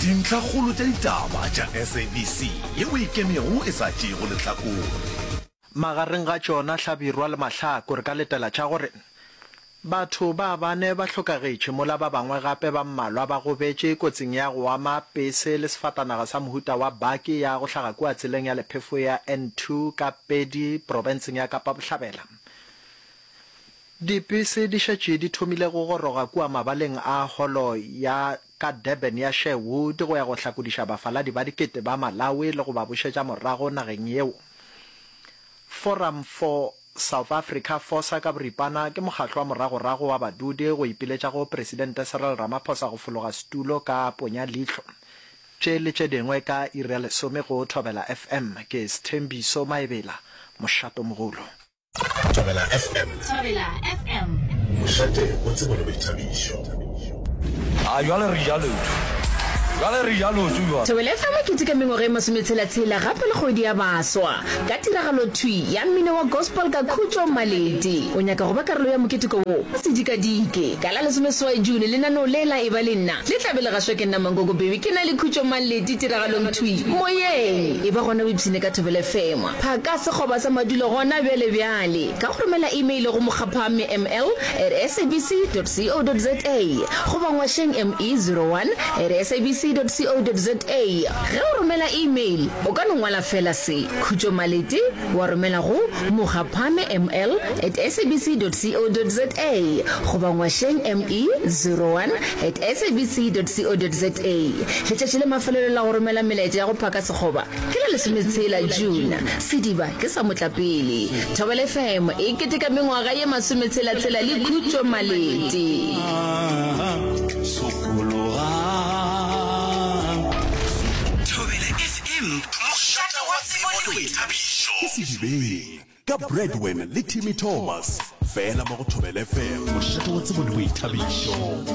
Dintlhakgolo tša ditaba tša SABC yeo e kemego e sa tšeego lehlakore. Magareng ga tšona hlabirwa le mahlaku re ka letela tša gore, Batho ba bane ba hlokagetše mola ba bangwe gape ba mmalwa ba gobetše kotsing ya go ama pese le sefatanaga sa mohuta wa baki ya go hlaga kua tseleng ya lephefo ya N2 ka Pedi profenseng ya Kapa Bohlabela. Dipese di šetše di thomile go goroga kua mabaleng a Holo ya ka Durban ya Sherwood go ya go hlakodiša bafaladi ba dikete ba Malawi le go ba bušetša morago nageng yeo. Forum for South Africa, Fosa ka boripana, ke mokgatlo wa moragorago wa badudi go ipiletša go Presidente Cyril Ramaphosa go fologa setulo ka ponya leihlo. Tše le tše dingwe ka iri ya lesome go Thobela FM. Ke Sthembiso Maebela, Mošatomogolo. Thobela FM. Thobela FM. Mošate o tsebo le boithabišo. A jwale re ja lotho. Jwale re ja lotho jwale. Thobela FM ke tika mengwaga e masometshela-tshela gape le kgwedi ya baswa ka tiragalo thwi ya mmino wa gospel ka Khutšo Maleti. O nyaka go ba karolo ya moketeko wo? O se dikadike. Ka la lesomeswai June lenaneo le la Eba le Nna le tla be le gašwa ke nna Mankoko Baby ke na le Khutšo Maleti tiragalong thwi moyeng. Eba gona o ipshine ka Thobela FM. Phaka sekgoba sa madulo gona bjale bjale ka go romela imeile go mokgaphamme ml at sabc dot co dot za goba ngwašeng ME zero one at sabc dot co dot za. Ge o romela imeil, o ka no ngwala feela se, Khutšo Malete, wa romela go mokgaphamme ml at sabc dot co dot za goba ngwašeng ME zero one at sabc dot co dot za. Letšatši la mafelelo la go romela melaetša ya go phaka sekgoba Ke la lesometshela June, sediba ke sa motlapele. Thobela FM e keteka mengwaga ye masometshela-tshela le khutšo Malete. Thobela FM, mošate wa tsebo le boithabišo. Ke Sedibeng ka Bradwen le Timmy Thomas, fela mo go Thobela FM, mošate wa tsebo le boithabišo.